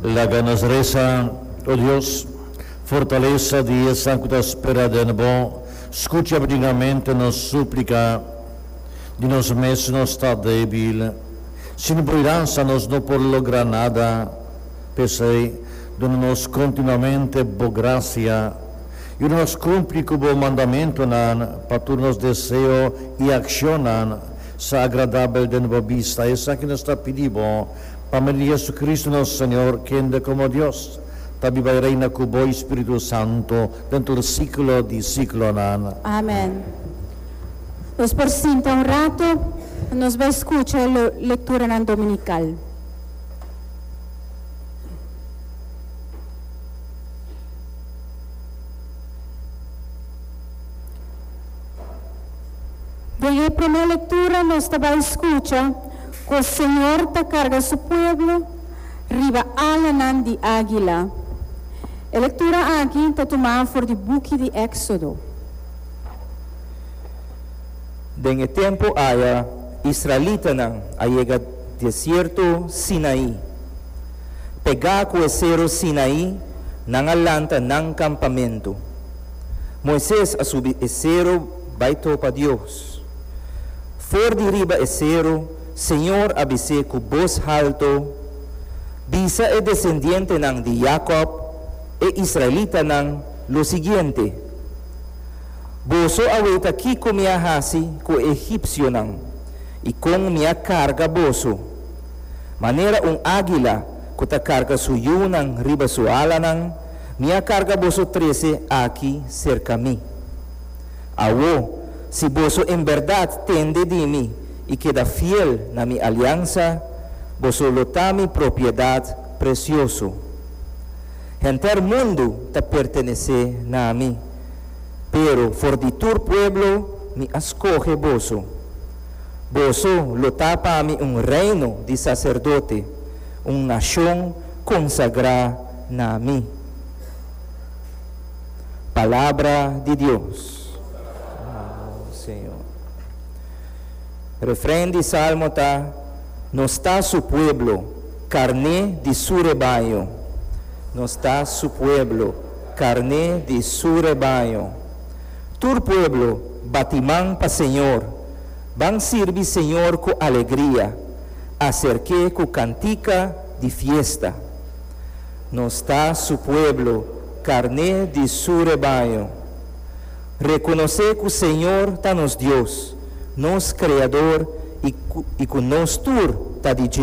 Laga nos resa, O Dios, fortalesa di esan ku ta spera den bo, skucha bidingamente nos súplika. Di nos mes nos ta débil. Sin bo idansa nos no por logra nada. P'esei, duna nos kontinuamente bo grasia. Yuda nos kumpli ku bo mandamentunan pa tur nos deseo i akshonnan sa agradabel den bo bista. Esaki nos ta pidi bo. Pa me di Jesucristo nos Señor, kende como Dios, ta biba y reina cu Bo y Spiritu Santo den tur siglo di siglonan. Amen. Nos por sinta un rato, y nos bai scucha lo lecturanan dominical. Den e primer lectura nos ta bai scucha. Cu Señor ta carga su pueblo riba alanan di águila. E lectura aki ta tumá for di buki di Éxodo. Den e tempu aya israelitanan a yega desierto Sinaí. Pegá cu e seru Sinaí nan a lanta nan campamentu. Moises a subi e seru bai tropa Dios. For di riba e seru, Señor a bis'é ku bos haltu, Bisa e desendientenan di Jakòb, e israelitanan, lo siguiente, Boso a weta kiko mi a hasi ku e egipsionan i kon mi a karga boso, manera un águila ku ta karga su yunan riba su alanan, mi a karga boso trese aki serka mi. Awo, si boso en berdad tende di mi i keda fiel na mi aliansa, boso lo ta mi propiedad precioso. Henter mundu ta pertenece na mi, pero for di tur pueblo mi a scoge boso. Boso lo ta pa mi un reino di sacerdote, un nacion consagrá na mi. Palabra di Dios. Alabao Señor. Refren di Salmo ta, Nos ta su pueblo, carne di su rebaño. Nos ta su pueblo, carne di su rebaño. Tur pueblo bati man pa Señor, ban sirbi Señor cu alegria, acerke cu cantica di fiesta. Nos ta Su pueblo, carné di Su rebaño. Reconocé cu Señor ta nos Dios, nos Creador y cu nos tur ta di Dje.